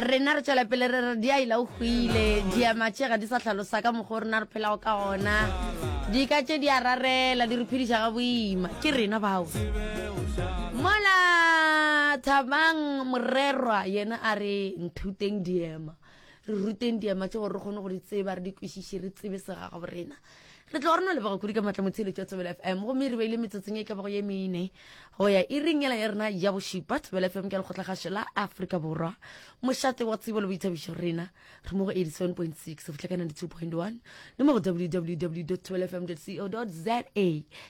rena re tšwela pele re re di a ila o hwile diamatše ga di sa tlhalosa ka mokgwa o rena re phelago ka gona dika tše di a rarela di re phediša ga boima ke rena bao mola thabang morerwa yena a re nthuteng diema re ruteng diema tse gore re kgone go di tseba re di kwešiše re tsebe segagabo rena re tlo rona leboga kudu ka maatla motsheletso ya tsebela fm gomme re beile metsotsong e ka bago ye mene go ya e ringela ya rena ya bošupa tsebela fm ke lekgotlagašo la aforika borwa mošate wa tsebo le boithabišo rena re mo go 87.6 go fitlha ka 92.1 le mo go www tebelafm co za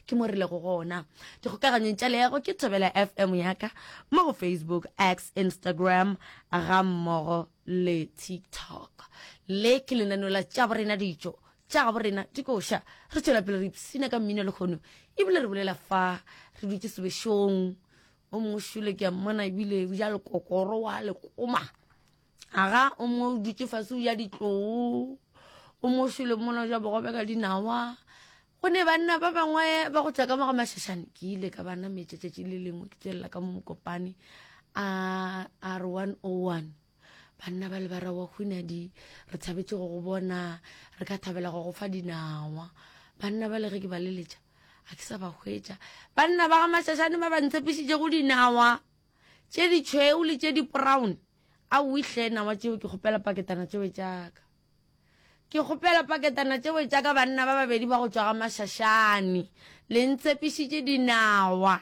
ke mo re lego gona dikgokaganyong tša leago ke tebela fm yaka mo go facebook x instagram ga mmogo le tiktok le ke lenaneo la tšabo rena dijo Tša gabo rena di koša. Re tšwela pele re ipshina ka mmino lekgono e bile re bolela fa re dutše sebešong. O mongwe šule ke a mmona e bile o ja lekokoro wa lekoma. Aga o mongwe o dutše fase o ja ditloo. O mongwe šule mmona o ja bogobe ka dinawa. go ne banna ba bangwe ba go tšwa ka moga mašašane ke ile ka bana metšetšetši le lengwe ke tswelela ka mo mokopane a r one o oh one Banna ba lebara wa hunadi, re thabetše go go bona, re ka thabela go go fa dinawa. Banna ba le ge ke ba leletša, a ke sa ba hwetša. Banna ba ga Mashashane ba ba ntshepišitše go dinawa tše ditšhweu le tše diporaone. A o ihle nawa tšeo ke kgopela paketana tšeo tšaka. Ke kgopela paketana tšeo tšaka banna ba babedi ba go tšwa ga Mashashane. Le ntshepišitše dinawa.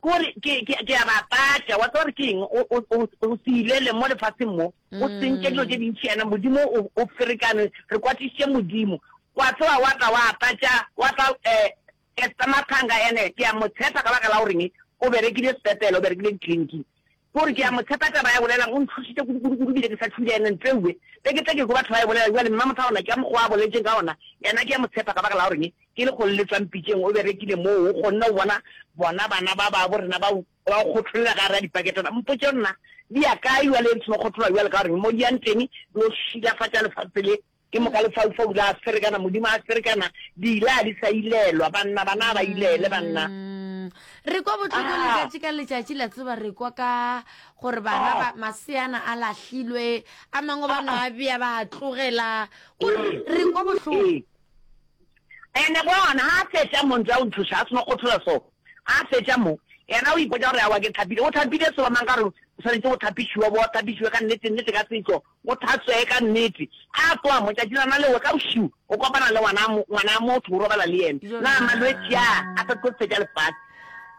Ke gore, ke, ke, ke a ba patša. Wa tseba gore ke eng? O, o, o, o se ilele mo lefaseng mo, o sentše dilo tše dintši, yana Modimo o, o ferekane, re kwatišitše Modimo. Wa tloga wa tla wa patša, wa tla, eh, Esther Mathanga, ene ke a mo tshepa ka baka la goreng o berekile sepetlele, o berekile ditleliniking. Gore ke a mo tshepa taba ya bolelang o ntlhošitše kudu kudu kudu bile ke sa thule ene ntleue be ke tle ke kwe batho ba e bolela bjale mma motho a ona ke a mokgoa a boletšeng ka ona yena ke a mo tshepa ka baka la goreng ke lekgole le tswang pitšeng o berekile moo o kgonne go bona bona bana ba babo rena ba ba o kgotholela gare a dipaketana mpotše nna di ya kae bjale e ntsheno kgothola bjale ka goreng mo di yang teng di o šilafatša lefase le Ke moka lefaufau la ferekana, Modimo a ferekana, dila a di sa ilelwa, banna, bana a ba ilele, banna. Mm. Re kwa botlhoko Ah. letšatši ka letšatši la tseba re kwa ka gore bana Ah. ba maseana a lahlilwe a mangwe ba no a bea ba a tlogela Ko re- Ee. re kwa bohloko Ee. Ene bona ha a fetša mo ntse a o nthuša a seno kgothola so ha a fetša mo yena o ipotsa gore awa ke thapile o thapile so ba mang ka gore o swanetse go thapišiwa bo thapišiwe ka nnete nnete ka setso Go Thatswee ka nnete. A kwa, motšatšilana lewe ka bošiu, o kopana le ngwana, ngwana a motho, o robala le yene. Bjona. Na malwetši a a sa tlo fetša lefase?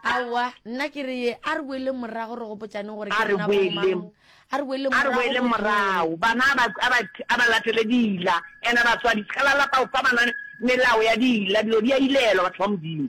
Aowa, nna ke re ye, a re boeleng morago re gopotšaneng gore A ke re rena boeleng, bomang. A re boeleng a re morago boeleng go morago. Moo. Bana a ba, a ba, a ba latele diila. Ena batswadi, se ka la lapa go fa bana melao ya diila. Dilo di a ilelwa, batho ba Modimo.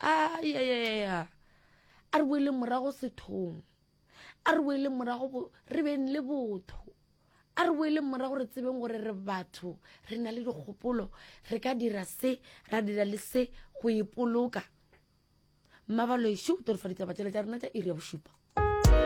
ayayaya a re boeleng morago sethong a re boeleng morago re beng le botho a re boeleng morago re tsebeng gore re batho re na le dikgopolo re ka dira se ra dira le se go ipoloka mmabaloešo o torofaditaba tsela tša rena tša iri ya bošupa